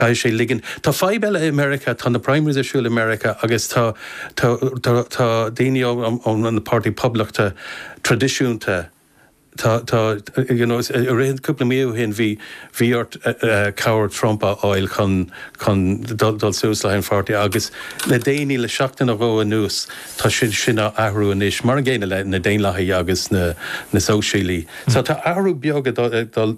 Caithfidh sé ligint. Tá fadhb eile i Meiriceá, tá na primaries ar siúl i Meiriceá agus tá tá daoine ón an páirtí poblachta tradisiúnta tá tá you know is i rith cúpla mí ó shin bhí bhí ort cabhair Trump a fháil chun chun dul dul suas leis an pháirtí agus le déanaí le seachtain nó dhó anuas tá sin sin á athrú anois mar an gcéanna le na Daonlathaigh agus na na Sóisialaigh so tá athrú beag ag dul ag dul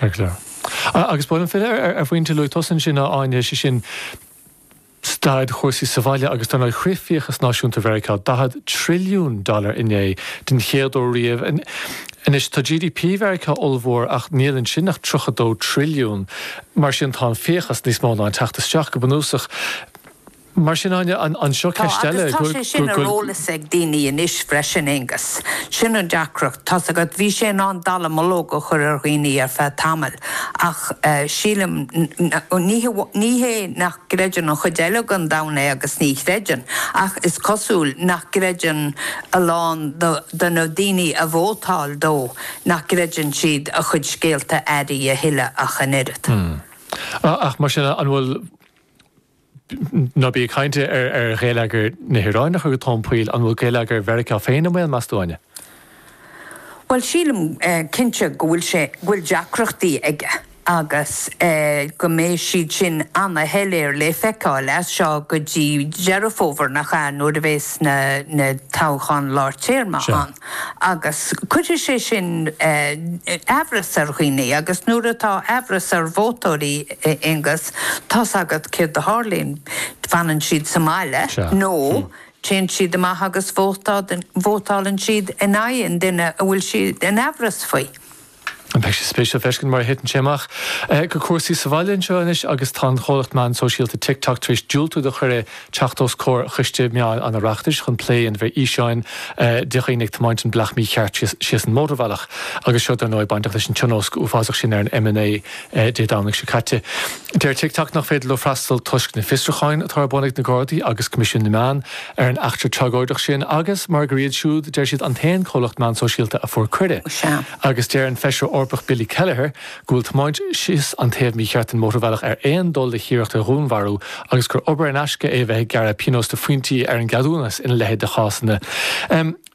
Ar chlár. Agus buaileann Féile ar phointe luaidh tusa ansin, a Áine, sé sin staid chúrsaí sa bhaile agus dar ndóigh shroich fiachas náisiúnta Mheiriceá, daichead trilliún dollar inné, den chéad uair riamh. Anois tá GDP Mheiriceá ollmhór ach níl ansin ach tríocha dó trilliún. Mar sin tá an fiachas níos mó ná an teacht isteach, go bunúsach. Mar sin, anseo Tá, ceist eile tá sé sin ar eolas ag daoine anois freisin, Aengus. Sin an deacracht. Tá's agat, bhí sé in ann dallamullóg a chur ar dhaoine ar feadh tamaill ach eh sílim ní hamháin, ní hé nach gcreideann an chuid eile den domhan é agus ní chreideann ach is cosúil nach gcreideann a lán de, de na daoine a vótáil dó, nach gcreideann siad a chuid scéalta áirithe a thuilleadh ach an oiread. Hmm. Ach mar sin, an bhfuil. Ná bac le caint ar ghéilleagar na hIaráine, a chuir tú, an bhfuil. An bhfuil geilleagar Mheiriceá féin i mbaol, meas tú, Áine? Bhuel, sílim cinnte go bhfuil sé, go bhfuil deacrachtaí aige agus go mbeidh siad sin ana-shoiléir le feiceáil as seo go dtí Deireadh Fómhair, nach ea, nuair a bheas na toghcháin lár téarma ann. Agus cuirfidh sé sin amhras ar dhaoine agus nuair atá amhras ar vótóirí, a Aonghus, tá's agat céard a tharlaíonn. Fanann siad sa mbaile nó téann siad amach agus vótálann siad in aghaidh an duine a bhfuil siad in amhras faoi. Beidh sé spéisiúil feiscint mar a thiteann sé amach go cúrsaí sa bhaile anseo anois agus tá an chomhlacht meán sóisialta TikTok tar éis diúltú do chuireadh teacht os comhair Choiste Meáin an Oireachtais chun plé ar na físeáin de dhaoine ag tiomáint an bealach mícheart síos an mótarbhealach agus seo dar ndóigh bainteach leis an tionóisc uafásach sin ar an M9. Dé Domhnaigh seo caite. Deir TikTok nach féidir leo freastal toisc na bhfiosrúchán atá ar bun ag na Gardaí agus Coimisiún na Meán ar an eachtra tragóideach sin agus mar gur iad siúd, deir siad, an t-aon comhlacht meán sóisialta a fuair cuireadh. Agus deir an Feisire Eorpach Billy Kelleher go bhfuil tiomáint síos an taobh mícheart den mhótarbhealach ar aon dul le hiarracht ar dhúnmharú agus gur obair in aisce é a bheith ag gearradh pionós de phointí ar an gceadúnas ina leithéid de chásanna.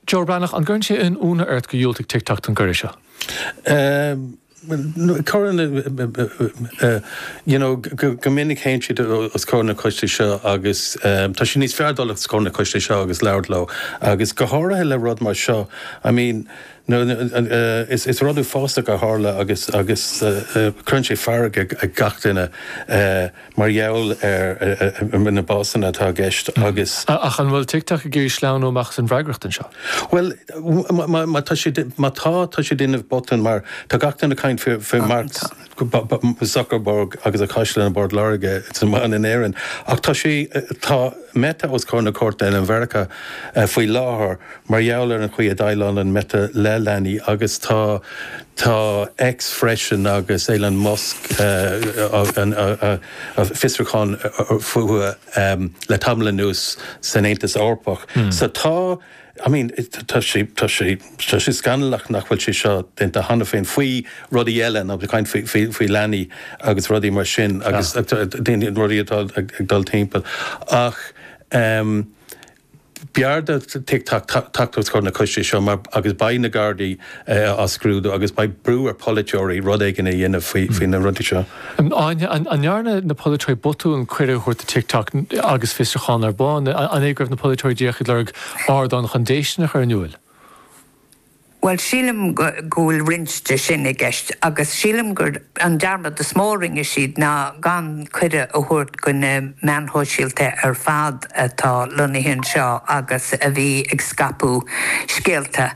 Joe Breathnach, an gcuireann sé aon ionadh ort gur dhiúltaigh TikTok don gcuireadh seo? Cuireann go minic théann siad os comhair na coistí seo agus tá sé níos fearr dul os comhair na coistí seo agus labhairt leo agus go háirithe le rud mar seo. I mean is rud uafásach a tharla agus cuireann sé fearg ar gach duine. mar gheall ar na básanna atá i gceist agus. Ach an bhfuil TikTok ag iarraidh sleamhnú amach as an bhfreagracht anseo? Bhuel, má tá siad, má tá, tá siad ag déanamh botún mar tá gach éinne ag caint faoi Mark Zuckerberg agus a chaisleán i bPort Láirge agus a mhana in Éirinn. Ach tá sé, tá Meta os comhair na cúirte i Meiriceá faoi láthair. mar gheall ar an chaoi a dhéileálann Meta le leanaí agus tá tá X freisin agus Elon Musk fiosrúcháin fúthu le tamall anuas san Aontas Eorpach so tá I mean tá sé tá sé tá sé scannalach nach bhfuil sé seo déanta cheana féin faoi rudaí eile ag caint faoi faoi leanaí agus rudaí mar sin agus daoine rudaí atá ag dul timpeall ach ehm B'fhearr do TikTok teacht os comhair na coiste seo mar, agus beidh na Gardaí á scrúdú agus beidh brú ar pholaiteoirí rud éigin a dhéanamh faoi na rudaí seo. Áine, An ndearna na polaiteoirí botún cuireadh a thabhairt do TikTok agus fiosrúchán ar bun? An é go raibh na polaiteoirí díreach ag lorg ardán chun déistean a chur in iúil? Bhuel, sílim go bhfuil roinnt de sin i gceist agus sílim gur an dearmad is mó a rinne siad ná gan cuireadh a thabhairt do na meáin shóisialta ar fad atá lonnaithe anseo agus a bhí ag scaipeadh scéalta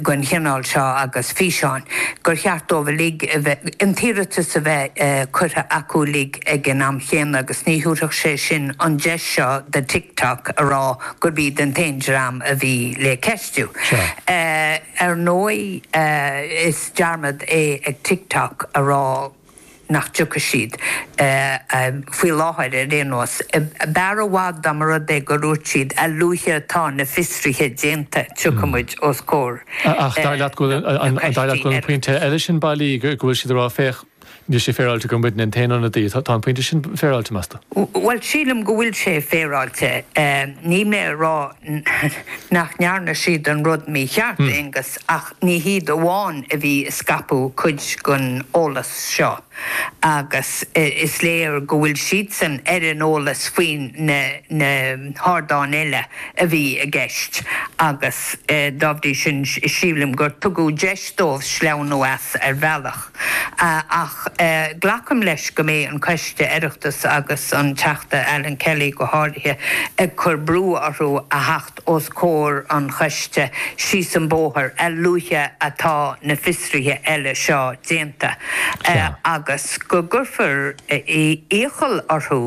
den chineál seo agus físeáin gur cheart dóibh uilig a bheith, an t-iarratas a bheith curtha acu uilig ag an am chéanna agus ní thabharfadh sé sin an deis seo do TikTok a rá gurb iad an t-aon dream a bhí le ceistiú. Ar ndóigh, is dearmad é ag TikTok a rá nach dtiocfaidh siad, faoi láthair ar aon nós. B'fhearr i bhfad dá mba rud é gur dhúirt siad, a luaithe atá na fiosruithe déanta, tiocfaidh muid os comhair an choiste. Ach dar leat go bhfuil an pointe eile sin bailí, go bhfuil siad ag rá, féach, Níl sé féaráilte gur muidne an t-aon ionadaí atá. Tá an pointe sin féaráilte, meas tú? Bhuel, sílim go bhfuil sé féaráilte. Níl mé ag rá nach ndearna siad an rud mícheart, a Aonghus, ach ní hiad amháin a bhí ag scaipeadh cuid den eolas seo. Agus is léir go bhfuil siadsan ar an eolas faoi na hardáin eile a bhí i gceist agus dá bhrí sin sílim gur tugadh deis dóibh sleamhnú as ar bhealach. Ach glacaim leis go mbeidh an Coiste Oireachtais agus an Teachta Alan Kelly go háirithe ag cur brú orthu a theacht os comhair an choiste síos an bóthar a luaithe atá na fiosruithe eile seo déanta agus go gcuirfear iachall orthu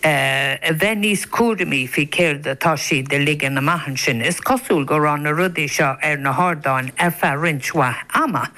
Eh, a bheith níos cúramaí faoi céard atá siad a ligean amach ansin. Is cosúil go raibh na rudaí seo ar na hardáin ar feadh roinnt mhaith ama.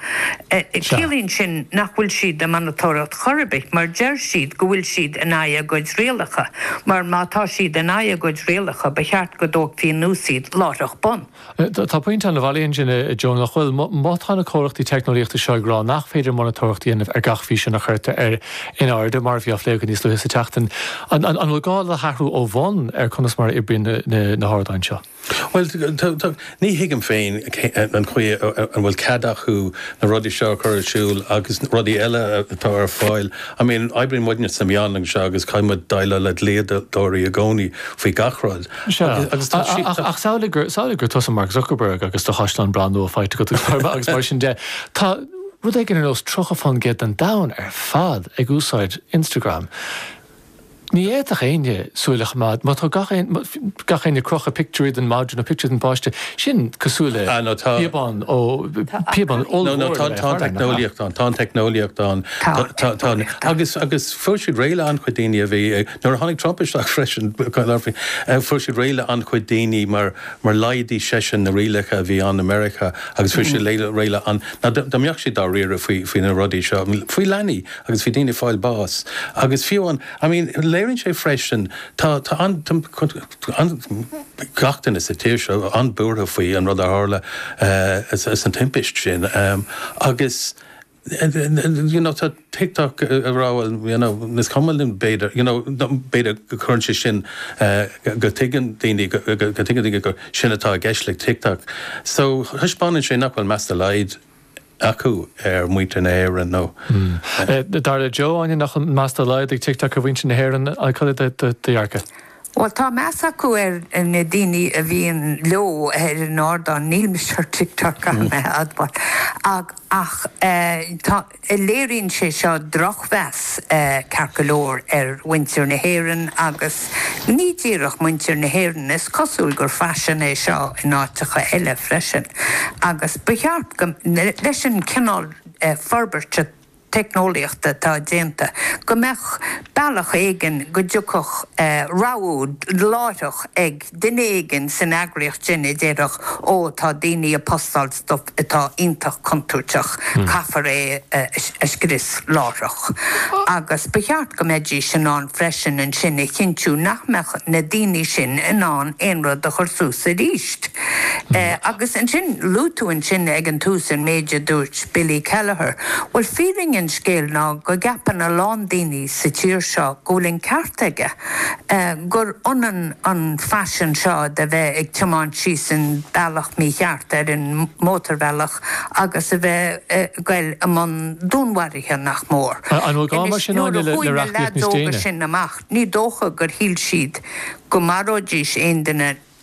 Eh, Sea. ciallaíonn sin nach bhfuil siad ag monatóireacht chor ar bith mar deir siad go bhfuil siad in aghaidh a gcuid rialacha, mar má tá siad in aghaidh a gcuid rialacha ba cheart go dtógfaí anuas iad láithreach bonn. Tá pointe an-bhailí ansin, a Joe, nach bhfuil? Má tá na comhlachtaí teicneolaíochta seo ag rá nach féidir monatóireacht a dhéanamh ar gach físeán a chuirtear in airde, mar a bhí á phlé againn níos luaithe sa tseachtain, an bhfuil gá le hathrú ó bhonn ar conas mar a oibríonn na hardáin seo? Bhuel, ní thuigim féin an chaoi a bhfuil cead acu na rudaí seo a chur ar siúl agus rudaí eile atá ar fáil. I mean, oibríonn muidne sa meán seo agus caithfidh muid déileáil le dlíodóirí i gcónaí faoi gach rud. Sea. Ach samhlaigh gur, samhlaigh gur tusa Mark Zuckerberg agus do chaisleán breá nua faighte agat i nGaoth Dobhair, agus mar sin de. Tá rud éigin ar nós 30% den domhan ar fad ag úsáid Instagram. Ní fhéadfadh éinne súil a choimeád, má tá gach aon, gach éinne ag crochadh pictiúirí den mhadra nó pictiúirí den pháiste, sin cosúil le Ah, no, tá. píobán ó, píobán ollmhór No, no, tá, tá an teicneolaíocht ann, tá an teicneolaíocht ann. Tá, tá, tá. Agus, agus fuair siad réidh le an-chuid daoine a bhí ag, Nuair a tháinig Trump isteach freisin, fuair siad réidh le an-chuid daoine mar laghdaigh seisean na rialacha a bhí ann i Meiriceá agus fuair siad réidh le an, ná dá mbeadh siad dá riaradh faoi na rudaí seo, faoi leanaí agus faoi daoine ag fáil bás. Agus fiú an, I mean, léiríonn sé freisin, tá an, an, gach duine sa tír seo an-buartha faoi an rud a tharla, an timpist sin agus, you know, tá TikTok ag rá, bhuel, you know, is cuma linn, b'fhéidir, you know, b'fhéidir go gcuireann sé sin, eh, go dtuigeann daoine, go dtuigeann daoine gur sin atá i gceist le TikTok. So, taispeánann sé nach bhfuil meas dá laghad acu ar mhuintir na hÉireann nó, eh. Eh, dar le Joe, Áine, nach bhfuil meas dá laghad ag TikTok ar mhuintir na hÉireann, eh, cad é do dhearcadh? Bhuel, tá meas acu ar na daoine a bhíonn leo ar an ardán, níl mise ar TikTok, caithfidh mé a admháil, ach tá, léiríonn sé seo drochmheas ceart go leor ar mhuintir na hÉireann agus ní díreach muintir na hÉireann, is cosúil gur faisean é seo in áiteacha eile freisin agus ba cheart go, leis an chineál forbairt teicneolaíochta atá déanta, go mbeadh bealach éigin go dtiocfadh rabhadh láithreach ag duine éigin san eagraíocht sin a déarfadh, ó, tá daoine ag postáil stuif atá iontach contúirteach, caithfear é a scrios láithreach. Agus ba cheart go mbeidís in ann freisin ansin a chinntiú nach mbeadh na daoine sin in ann aon rud a chur suas arís. Agus ansin, luaigh tú ansin ag an tús an méid a dúirt Billy Kelleher, Bhuel, fírinne an scéil ná go gceapann a lán daoine sa tír seo go bhfuil an ceart aige, gur ionann an faisean seo de bheith ag tiomáint síos an bealach mícheart ar an mótarbhealach agus a bheith ag goil i mbun dúnmharaithe, nach mór. An bhfuil gá mar sin ann le reachtaíocht níos déine? Anois nuair a chuaigh na leaids óga sin amach ní dócha gur shíl siad go maróidís aon duine.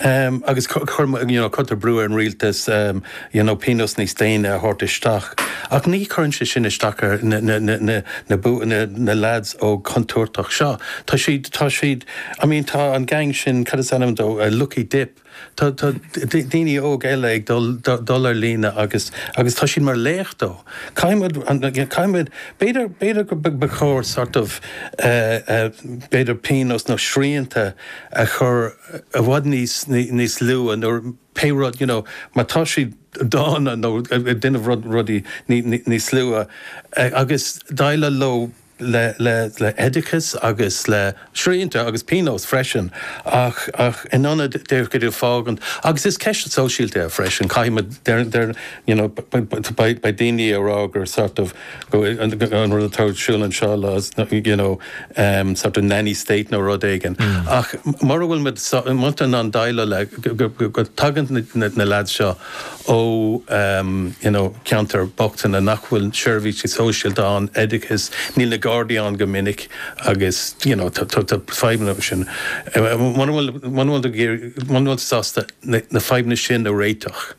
Agus you know cuirtear brú ar an rialtas you know pionós níos déine a thabhairt isteach. Ach ní chuireann sé sin isteach ar na lads óga contúirteach seo. Tá siad, tá siad, I mean tá an gang sin, cad is ainm dóibh, Lucky Dip, tá daoine óg eile ag dul ar líne agus agus tá siad mar laoch dóibh. Caithfidh muid, caithfidh muid, b'fhéidir, b'fhéidir gur ba chóir sort of b'fhéidir pionós nó srianta, a chur i bhfad níos, níos luaithe, nuair, pé rud, you know, má tá siad dána nó ag déanamh rud, rudaí níos, níos, níos luaithe agus déileáil leo le, le, le oideachas agus le srianta agus pionóis freisin ach, ach in ionad de, go de fágaint, agus is ceist sóisialta é freisin, caithfidh muid, deir, deir, you know, beidh, beidh daoine ag rá gur sort of, an rud atá ar siúl anseo le you know em sort of nanny state nó rud éigin ach mura bhfuil muid in ann déileáil le go tagann na lads seo ó em you know ceantar bochtaine nach bhfuil seirbhísí sóisialta ann, oideachas, níl na Gardaí ann go minic agus you know tá tá tá fadhbanna mar sin. Muna bhfuil muna bhfuil tú ag iarraidh muna bhfuil tú sásta na fadhbanna sin a réiteach,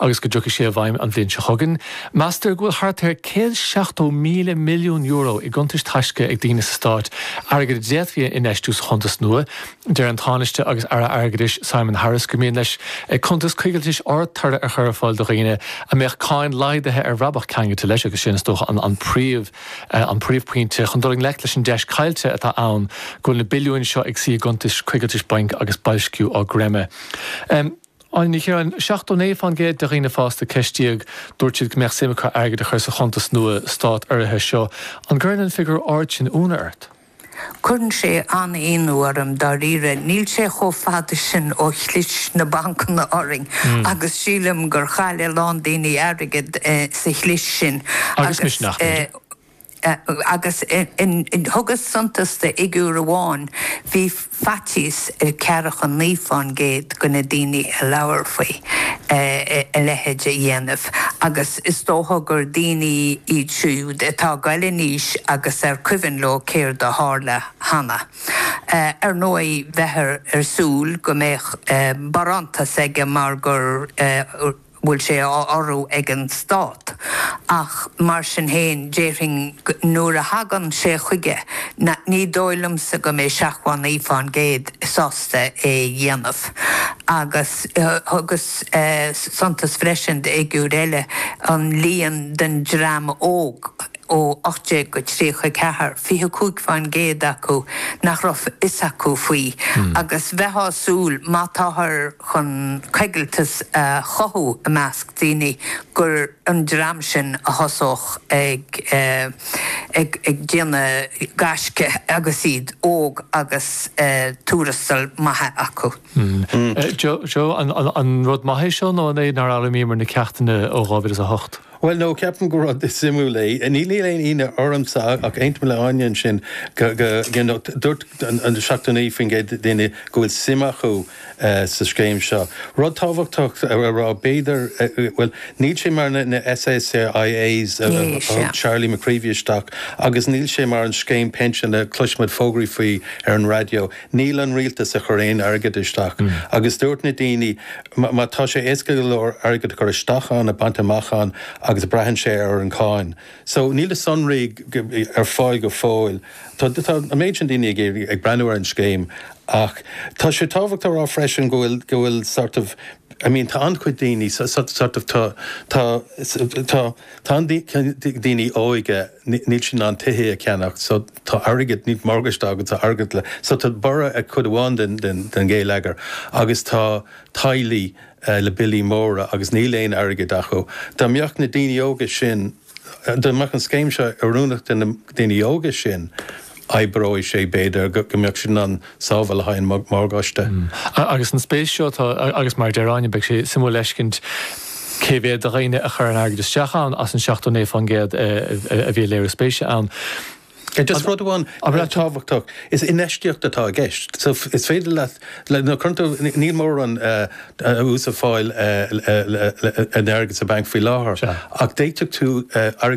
agus go dtiocfaidh sé i bhfeidhm an bhliain seo chugainn. Meastar go bhfuil thart ar €170,000 milliún i gcuntais taisce ag daoine sa Stát, airgead a d'fhéadfaí a infheistiú sa chuntas nua. Deir an Tánaiste agus Aire Airgeadais Simon Harris gur mian leis cuntas coigiltis ardtoradh a chur ar fáil do dhaoine a mbeadh cáin laghdaithe ar bhrabach ceangailte leis agus sin, is dócha, an príomh, an príomhphointe chun dul i ngleic leis an deis chaillte atá ann go bhfuil na billiúin seo ag suí i gcuntais coigiltis bainc agus boilsciú á gcreimeadh. Áine Ní Chiaráin, 79% de dhaoine fásta a ceistíodh, dúirt siad go mbeadh suim acu airgead a chur sa chuntas nua stát-urraithe seo. An gcuireann an figiúr ard sin ionadh ort? Cuireann sé an-ionadh orm, dáiríre. Níl sé chomh fada sin ó chlis na bancanna orainn agus sílim gur chaill a lán daoine airgead sa chlis sin. Agus misneach, b'fhéidir. agus thugas suntas de fhigiúr amháin, bhí faitíos ar ceathracha a naoi faoin gcéad de na daoine a labhair faoi a leithéid a dhéanamh, agus is dócha gur daoine iad siúd atá ag gabháil in aois agus ar cuimhin leo céard a tharla cheana. Ar ndóigh, bheifeá ag súil go mbeadh barántas aige mar gur. bhfuil sé á urrú ag an Stát. Ach mar sin féin, déarfainn go, nuair a thagann sé chuige, na, ní dóigh liomsa go mbeidh 79% sásta é a dhéanamh. Agus thugas suntas freisin d'fhigiúr eile, an líon den dream óg, ó 18 go 34, 25% acu nach raibh a fhios acu faoi, agus bheitheá ag súil má táthar chun coigilteas a chothú i measc daoine gur an dream sin a thosódh ag déanamh gaisce agus iad óg agus tuarastail maithe acu. Joe, an rud maith é seo nó an é nár fhoghlaimíomar na ceachtanna ó 2008? Bhuel no, ceapaim gur rud suimiúil é. Níl níl aon ionadh ormsa ach aontaim le Áine ansin go, go, you know, dúirt an, an 79% daoine go bhfuil suim acu sa scéim seo. Rud tábhachtach a rá, b'fhéidir, bhuel, níl sé mar na, na SSIAs a, a thug Charlie McCreevy isteach agus níl sé mar an scéim pinsean a chloisimid fógraí faoi ar an raidió. Níl an rialtas ag chur aon airgead isteach agus dúirt na daoine, má tá sé éasca go leor airgead a chur isteach ann, a baint amach ann agus braitheann sé ar an cháin. So, níl na sonraí ar fáil go fóill. Tá an méid sin daoine ag breathnú ar an scéim ach tá sé tábhachtach a rá freisin go bhfuil sort of, I mean, tá an-chuid daoine sort of, tá, tá, tá an-chuid daoine óige, níl siad in ann tithe a cheannacht so, Tá airgead, níl morgáiste acu, tá airgead le. So tá borradh ag cuid amháin den ghéilleagar agus tá teaghlaigh le billí móra agus níl aon airgead acu. Dá mbeadh na daoine óga sin, dá mbeadh an scéim seo oiriúnach do na daoine óga sin, oibreoidh sé, b'fhéidir, go mbeadh siad in ann. sábháil le haghaidh an mhorgáiste. Agus an spéis seo atá, agus mar a deir Áine, beidh sé suimiúil a fheiscint cé mhéad de dhaoine a chuireann airgead isteach ann as an 79% a bhí ag léiriú spéise ann. Just rud amháin atá tábhachtach, is infheistíocht atá i gceist. So is féidir leat, nuair a chuireann tú, níl mórán ús ar fáil ar d'airgead sa bhanc faoi láthair, ach d'fhéadfadh tú airgead a